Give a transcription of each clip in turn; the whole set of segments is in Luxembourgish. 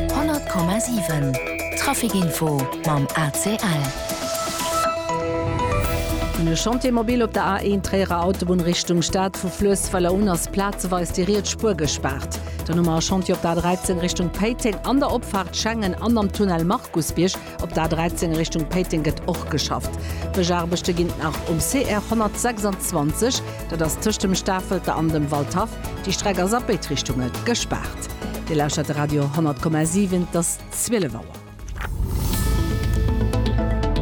100,7 Trafic Info mam ACL. Vun e Chantier mobil op der A1 Tréierer Autobunn Richtung Stad. Vu Fluessweller un ass plazeweis déi riets Spuer gespaart. Dann hu mer e Chantier op der A13 Richtung Péiteng an der Opfaart Schengen an am Tunnel Markusbierg. Op der A13 Richtung Péiteng gëtt och geschafft. D'Bëschaarbechte ginn nach um CR 126, dat ass tëscht dem Stafelter an dem Waldhaff. Déi Streck ass a béid Richtunge gespaart. Dir lauschtert de Radio 10,7, et ass 12 Auer.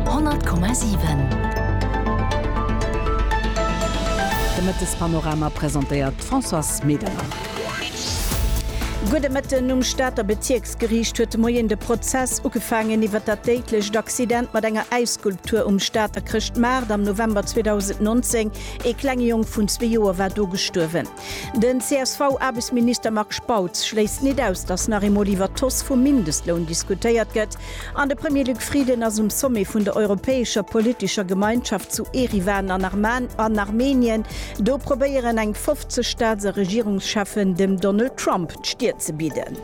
10,7 De Mëttespanorama presentéiert d'Françoise Medernach. Gudde Mëtten um Stater Bezierks. D'Geriicht huet de Moien de Prozess ugefaangen iwwer dat déidlecht Accident mat enger Äisskulptur um Stater Chrëschtmaart am November 2019. Ee klenge Jong vun zwee Joer war do gestuerwen. Den CSV-Aarbechtsminister Marc Spautz schléisst nit aus, datt nach eemol iwwer d'Hausse vum Mindestloun diskutéiert gëtt an de Premier Luc Frieden ass um Sommet vun der europäescher politescher Gemeinschaft zu Eriwan an Armenien. Do probéieren eng 50 Staats a Regierungscheffen dem Donald Trump d'Stir ze bidden.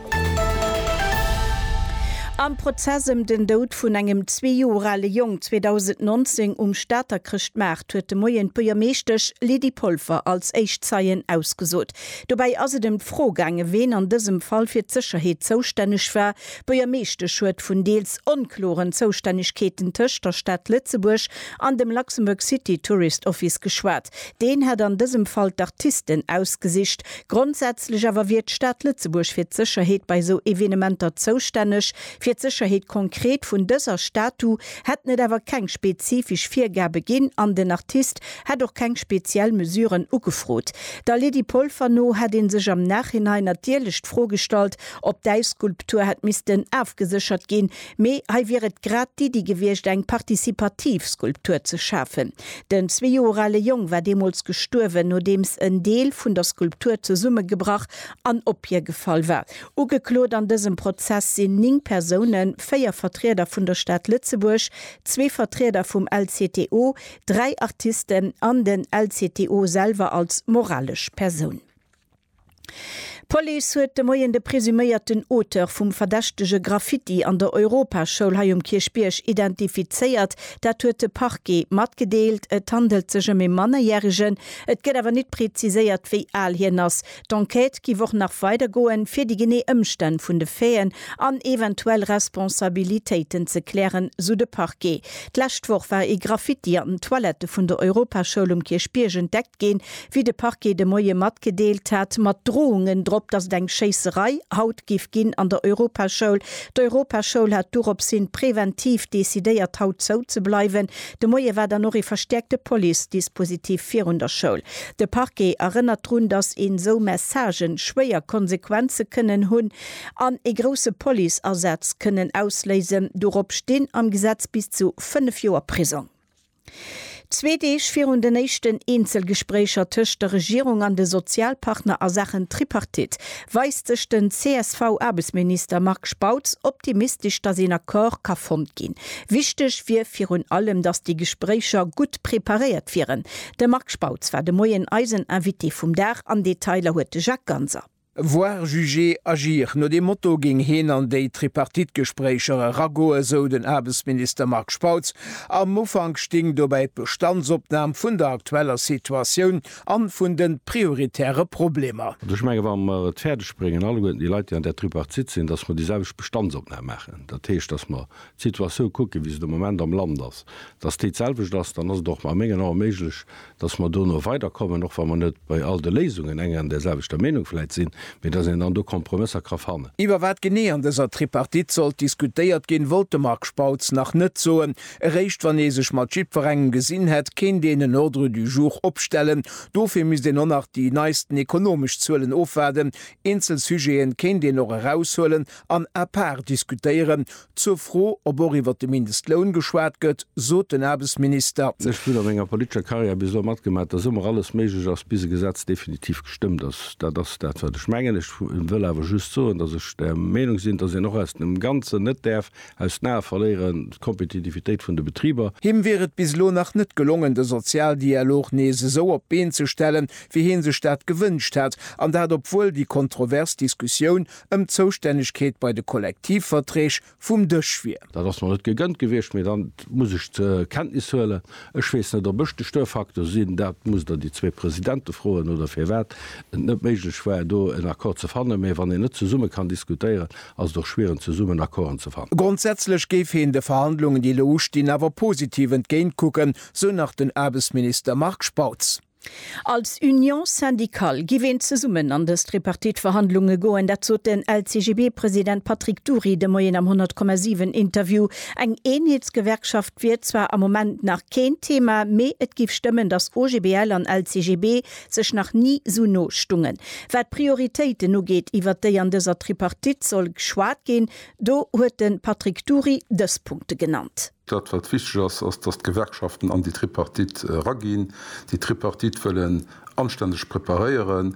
Am Prozess ëm den Doud vun engem zwee Joer ale Jong 2019 um Stater Chrëschtmaart huet de Moien d'Buergermeeschtesch Lydie Polfer als éischt Zeien ausgesot. Dobäi ass et ëm d'Fro gaangen, ween an dësem Fall fir d'Sécherheet zoustänneg war. D'Buergermeeschtesch huet vun deels onkloren Zoustännegkeeten tëscht der Stad Lëtzebuerg an dem Luxembourg City Tourist Office geschwat. Deen hätt an dësem Fall d'Artisten ausgesicht, Grondsätzlech awer wier d'Stad Lëtzebuerg fir d'Sécherheet bei esou Evenementer zoustänneg. Fir d'Sécherheet konkret vun dëser Statu hätten et awer keng spezifesch Virgabe ginn an den Artist hätt och keng speziell Mesuren ugefrot. Der Lydie Polfer no hätt ee sech am Nachhinein natierlech d'Fro gestallt, ob d'Äisskulptur hätt missten afgeséchert ginn, Mee hei wier et grad d'Iddi gewiescht, eng partizipativ Skulptur ze schafen. Den zwee Joer ale Jong war deemools gestuerwen, nodeems en Deel vun der Skulptur zesummegebrach an ophiergefall war. Ugeklot an dësem Prozess sinn ning Persounen, véier Vertrieder vun der Stad Lëtzebuerg, zwee Vertrieder vum LCTO, dräi Artisten an den LCTO selwer als moralesch Persoun. D'Police huet de Moien de presuméierten Auteur vum verdächtege Graffiti an der Europaschoul hei um Kierchbierg identifizéiert. Dat huet de Parquet matgedeelt. Et handelt sech ëm ee Mannerjäregen. Et gëtt awer nit preziséiert, wéi al hien ass. D'Enquête giff och nach weider goen, fir déi genee Ëmstänn vun de Faiten an eventuell Responsabilitéiten ze klären, sou de Parquet. D'lescht Woch war ee Graffiti an den Toilette vun der Europaschoul um Kierchbierg entdeckt ginn. wéi de Parquet de Moie matgedeelt hat, mat Droungen drop, datt et eng Schéisserei haut giff ginn an der Europaschoul. D'Europaschoul hat dorops hin präventiv decidéiert haut zou ze bleiwen. De Moie war dann och ee verstäerkte Police-Dispositif virun der Schoul. De Parquet erënnert drun, datt een esou Messagen schwéier Konsequenze kënnen hunn an ee grousse Police-Asaz kënnen ausléisen. Dorops stinn am Gesetz bis zu 5 Joer Prisong. Zwee Deeg virun den éischten Eenzelgespréicher tëscht der Regierung an de Sozialpartner a Saachen Tripartite weist sech den CSV-Aarbechtsminister Marc Spautz optimistesch, datt een Accord ka fonnt ginn. Wichteg wier virun allem, datt déi Gespréicher gutt preparéiert wieren. De Marc Spautz war de Moien eisen Invité vum Dag an Detailer huet de Jacques Ganser. Voir, juger, agir, no deem Motto géing heen an déi Tripartite-Gespréicher eragoen, sou den Aarbechtsminister Marc Spautz. Am Ufank sting dobäi d'Bestandsopnam vun der aktueller Situatioun an vun den prioritäre Problemer. An ech mengen, wa mer et fäerdeg bréngen, alleguerten déi Leit, déi an där Tripartite sinn, datt mer déi selwecht Bestandsopnam maachen, dat heescht, datt mer d'Situatioun kucken, wéi se de Moment am Land ass, datt déi d'selwecht ass, dann ass et och a mengen Ae méiglech, dass mer do no weider kommen, och wa mer net bei all de Léisungen eng an där selwechter Meenung vläit sinn, mee dass een dann do Kompromësser ka fannen. Iwwer wat genee an dëser Tripartite sollt diskutéiert ginn, wollt de Marc Spautz nach net soen. Eréischt wann ee sech mat jiddwerengem gesinn hätt, kéint een en Ordre du jour opstellen. Dofir misst een och nach déi neisten ekonomesch Zuelen ofwaarden. Eenzel Sujete kéint een och eraushuelen an à part diskutéieren, Zur Fro, ob och iwwer de Mindestloun geschwat gëtt, sot den Aarbechtsminister. Ech hunn a menger politescher Karriär bis elo matgemaach, datt ëmmer alles méiglech ass, bis e Gesetz definitiv gestëmmt ass. Dat ass dat, wat ech mengen. Ech wëll awer just soen, datt ech der Meenung sinn, datt een och aus dem Ganzen net däerf aus den Ae verléieren, d'Kompetitivitéit vun de Betriber. Him wier et bis elo nach net gelongen, de Sozialdialog nees esou op d'Been ze stellen, wéi hie sech dat gewënscht hätt, an dat obwuel déi kontrovers Diskussioun ëm d'Zoustännegkeet bei de Kollektivverträg vum Dësch wier. Dat ass mer net gegënnt gewiescht, mee dann muss ech zur Kenntnis huelen. Ech weess net, ob ech de Störfaktor sinn, dat musst Der déi zwee Presidente froen, oder firwat et net méiglech war, do en Accord ze fannen. Mee wann een net zesumme kann diskutéieren, ass et och schwiereg, zesummen Accorden ze fannen. Grondsätzlech géif heen de Verhandlungen, déi elo ustinn, awer positiv entgéintkucken, sou nach den Aarbechtsminister Marc Spautz. Als Union syndicale giff een zesummen an dës Tripartite-Verhandlunge goen, dat sot den LCGB-President Patrick Dury de Moien am 100,7 Interview. Eng Eenheetsgewerkschaft wier zwar am Moment nach keen Thema, mee et giff stëmmen, datt OGBL an LCGB sech nach ni sou no stungen. Wat d'Prioritéiten ugeet, iwwert déi an dëser Tripartite soll geschwat ginn, do huet de Patrick Dury dës Punkte genannt. Dat, wat wichteg ass, ass, dass d'Gewerkschaften an déi Tripartite eraginn. Déi Tripartite wëll en anständeg preparéieren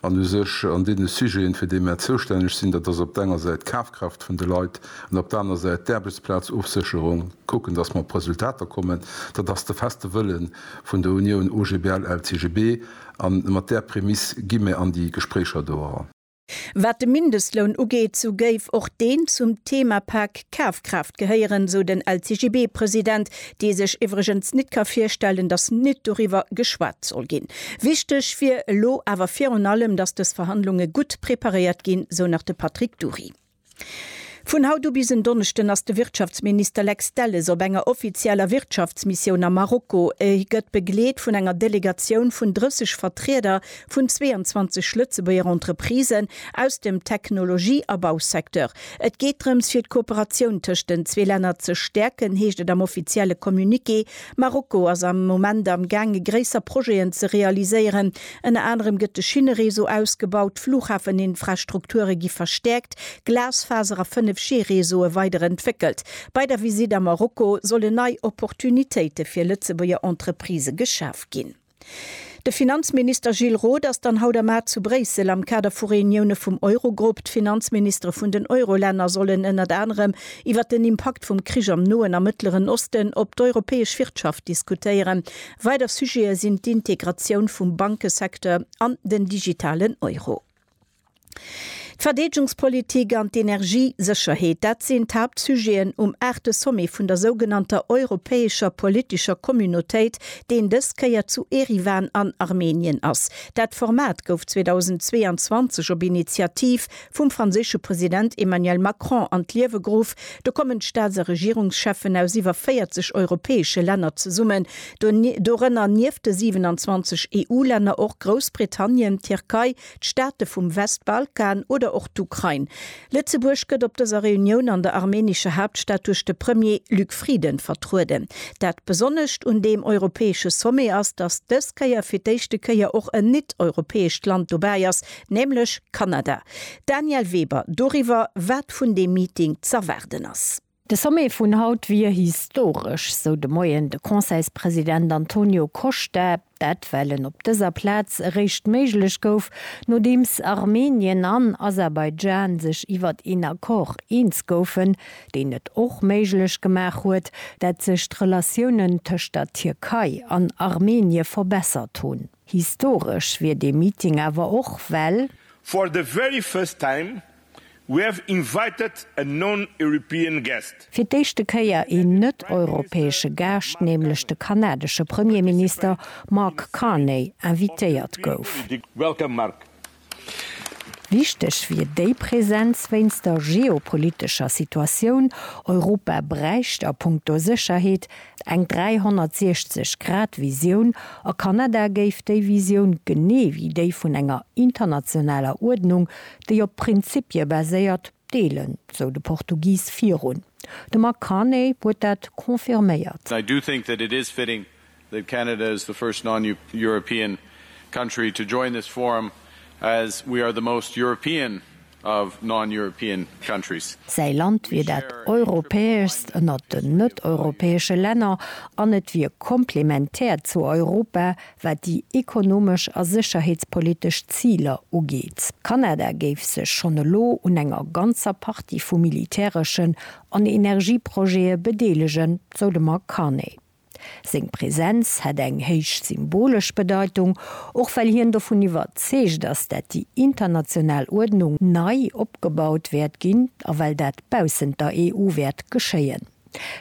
an u sech an deene Sujeten, fir déi mär zoustänneg sinn, dat ass op der enger Säit d'Kafkraaft vun de Leit an op der anerer Säit d'Aarbechtsplazofsécherung, kucken, dass mer op Resultater kommen. Dat ass de feste Wëlle vun der Unioun OGBL-LCGB. A mat där Prämiss gi mär an déi Gespréicher do eran. Wat de Mindestloun ugeet, sou géif och deen zum Themapak Kafkraaft gehéieren, sou den LCGB-President, dee sech iwwregens nit ka virstellen, datt nit doriwwer geschwat soll ginn. Wichteg wier elo awer virun allem, datt dës Verhandlunge gutt preparéiert ginn, sou nach de Patrick Dury. Vun haut u bis en Donneschden ass de Wirtschaftsminister Lex Delles op enger offizieller Wirtschaftsmissioun a Marokko. E gëtt begleet vun enger Delegatioun vun 30 Vertrieder vun 22 Lëtzebuerger Entreprisen aus dem Technologie a Bausecteur. Et geet drëms, fir d'Kooperatioun tëscht den zwee Länner ze stäerken, heescht et am offizielle Communiqué. Marokko ass am Moment am gaange gréisser Projeten ze realiséieren. Ënner anerem gëtt de Schinnereseau ausgebaut, d'Flughafeninfrastrukture gi verstäerkt, Glasfaser a 5G-Reseaue weider entwéckelt. Bei der Visitt a Marokko solle nei Opportunitéite fir Lëtzebuerger Entreprisë geschaf ginn. De Finanzminister Gilles Roth ass dann haut am Mar zu Bréissel. Am Kader vu Reunioune vum Eurogrupp, d'Finanzministere vun den Eurolänner sollen ënnert anerem iwwer den Impakt vum Krich am Noen a Mëttleren Osten op d'europäesch Wirtschaft diskutéieren. Weider Sujete sinn d'Integratioun vum Bankesecteur an den digitalen Euro. D'Verdeedgungspolitik an d'Energiesécherheet, dat sinn d'Haaptsujeten um aachte Sommet vun der sougenannter europäescher politescher Communautéit, deen dës Kéier zu Eriwan an Armenien ass. Dat Format gouf 2022 op Initiativ vum franséische President Emmanuel Macron an d'Liewe geruff. Do kommen d'Staats a Regierungscheffen aus iwwer 40 europäesche Länner zesummen, dorënner nieft de 27 EU-Länner och Groussbritannien, d'Tierkei, d'Staate vum Westbalkan oder och d'Ukrain. Lëtzebuerg gëtt op dëser Reunioun an der armenescher Haaptstad duerch de Premier Luc Frieden vertrueden. Dat Besonnescht un deem europäesche Sommet ass, datt dës Kéier fir d'éischte Kéier och en nit-europäescht Land dobäi ass, Nämlech Kanada. Danièle Weber doriwwer, wat vun deem Meeting z'erwaarden ass. De Sommet vun haut wier historesch, sou de Moien de Conseilspresident Antonio Costa. Dat well en op dëser Plaz eréischt méiglech gouf, nodeems Armenien an Aserbaidschan sech iwwert een Accord eens goufen, deen et och méiglech gemaach huet, dat sech d'Relatiounen tëscht der Tierkei an Armenie verbessert hunn. Historesch wier dee Meeting awer och, well. For the very first time we have invited a non-European guest. Fir d'éischte Kéier een net-europäesche Gaascht, nämlech de kanadesche Premierminister Mark Carney invitéiert gouf. Welcome Mark. Wichteg wier déi Präsenz wéinst der geopolitescher Situatioun. Europa bräicht a punkto Sécherheet eng 360 Grad Visioun, a Kanada géif déi Visioun, genee wéi déi vun enger internationaler Uerdnung, déi op Prinzippie baséiert, deelen, sou de Portugis virun. De Mark Carney huet dat confirméiert. that Canada is the first non-European country to join this forum as we are the most European of non-European countries. Säi Land wier dat europäeschst ënnert den net-europäesche Länner an et wier komplementär zu Europa, wat déi ekonomesch a sécherheetspolitesch Ziler ugeet. Kanada géif sech schonn elo un enger ganzer Partie vu militäreschen an Energieprojete bedeelegen, sou de Mark Carney. Seng Präsenz hätt eng héich symbolesch Bedeitung, och well hien dovun iwwerzeegt ass, dat déi international Uerdnung nei opgebaut wäert ginn a well dat baussent der EU wäert geschéien.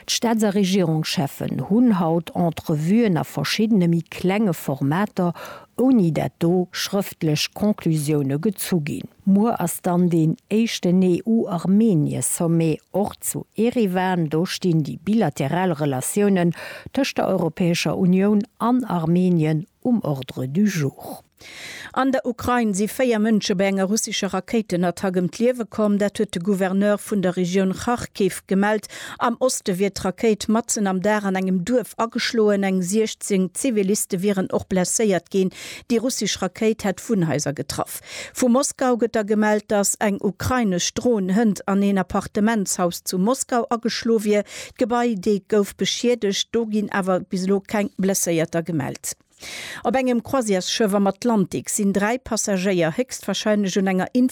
D'Staats a Regierungscheffen hunn haut Entrevuen a verschiddene méi klenge Formater, ouni dat do schrëftlech Conclusioune gezu ginn. Muer ass dann deen éischten EU-Armenie-Sommet, och zu Eriwan. Do stinn déi bilateral Relatiounen tëscht der Europäescher Unioun an Armenien um Ordre du jour. An der Ukrain si véier Mënsche bei enger russescher Rakéitenattack ëm d'Liewe komm. Dat huet de Gouverneur vun der Regioun Kharkiv gemellt. Am Oste wier d'Rakéit matzen am Dag an engem Duerf ageschloen. Eng 16 Ziviliste wieren och blesséiert ginn. Déi russesch Rakéit hätt Wunnhaiser getraff. Vu Moskau gëtt da gemellt, datt eng ukrainesch Dron hënt an een Appartementshaus zu Moskau ageschloe wier. D'Gebai, dee gouf beschiedegt, do ginn awer bis elo keng Blesséierter gemellt. Op engem Croisièresschëff am Atlantik sinn dräi Passagéier héchstwarscheinlech un enger Infektioun